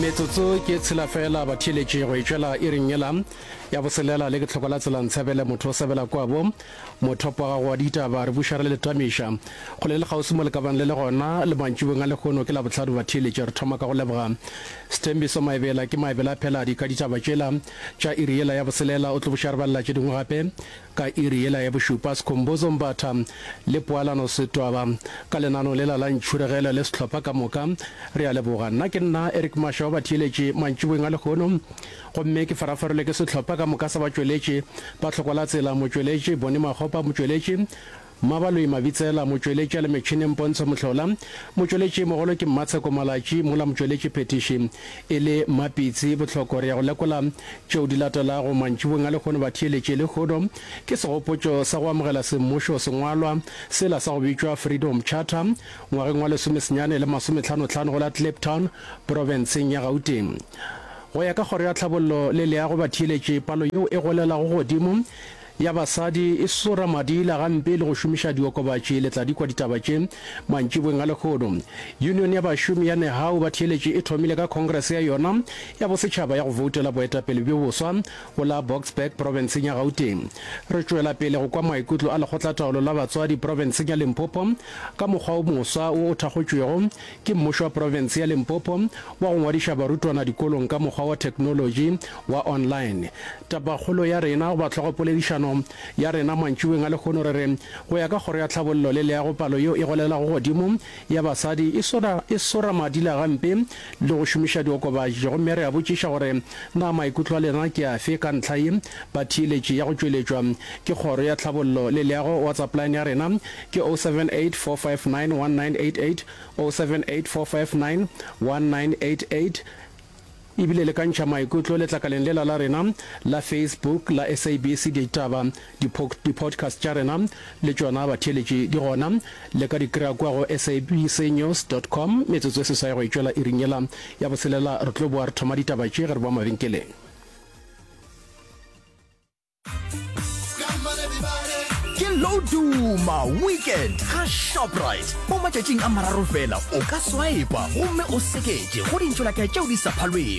metsotso ke tshela fela ba theletše go etšwela e reng yela ya boselela le ke tlhoko la tsela ntshebele motho o sebela kwabo mothopo ga go ditaba re bušare le letamiša go le le kgauswi mo le ka bang le le gona le mantšibong a lehono ke la bohlano ba theletše re thoma ka go leboga sethembiso maebela ke maebela phela di ka ditaba tšela tša iri yela ya boselela o tlo bušare ba lela tše dingwe gape Ka iri yela ya bošupa, Skhumbuzo Mbatha le Poalano Setwaba ka lenaneo lela la Ntšhuregele le sehlopha ka moka, re a leboga. Nna ke nna Eric Masha wa batheeletši mantšiboeng a lehono, gomme ke farafarelwe ke sehlopha ka moka sa batšweletši, Batlhokwalatsela motšweletši, Bonnie Makgopa motšweletši, Mmabaloi Mabitsela, motšweletša le metšhineng Pontsho Mohlola, motšweletši mogolo ke Mmatsheko Malatši, mola motšweletši phethiši e le Mmapitsi Bohloko. Re ya go lekola tšeo di latelago mantšibong a lekgono batheeletši lehono ke segopotšo sa go amogela semmušo sengwalwa sela sa go bitšwa Freedom Charter ngwageng wa lesome senyane le masome tlhano tlhano go la Kliptown profenseng ya Gauteng. Go ya ka Kgoro ya Tlhabollo le Leago batheeletši palo yeo e golelago godimo ya basadi e sora madila gampe le go šomiša diokobatši le tladikwa ditaba tše mantšibweng a lehono. Union ya bašomi ya Nehau ba Theeletše e thomile ka khongrese ya yona ya bosetšhaba ya go voutela boetapele bjo boswa go la Boksburg profenseng ya Gauteng. Re tšwela pele go kwa maikutlo a lekgotlataolo la batswadi profenseng ya Limpopo ka mokgwa wo moswa wo o thakgotšwego Ke mmušo wa profense ya Limpopo wa go ngwadiša barutwana dikolong ka mokgwa wa theknolotši wa online. Tapakgolo ya rena goba hlogopoledišano ya rena mantšiboeng a lehono re re, Go ya ka Kgoro ya Tlhabollo le Leago palo yeo e golelago godimo ya basadi e sora e sora madila gampe le go šomiša diokobatši gomme re a botšiša gore na maikutlo a lena ke afe ka ntlha ye batheeletši ya go tšweletšwa ke Kgoro ya Tlhabollo le Leago wa tsa plan ya rena ke 0784591988, 0784591988, e bile le ka ntšha maikutlo letlakaleng lela la rena la Facebook la SABC Ditaba. Di-podcast tša rena le tšona batheeletši di gona, le ka di kry-a kua go sabcnews dot com. Metsotso e seswai go e tšwela iring yela ya botshelela re tlo boa re thoma ditaba tše ge re boa mabenkeleng. ke loduma weekend ga shoprite mo matšatšing a mararo fela o ka swipa gomme o seketše go dintšholaka tšeo di sa phalwego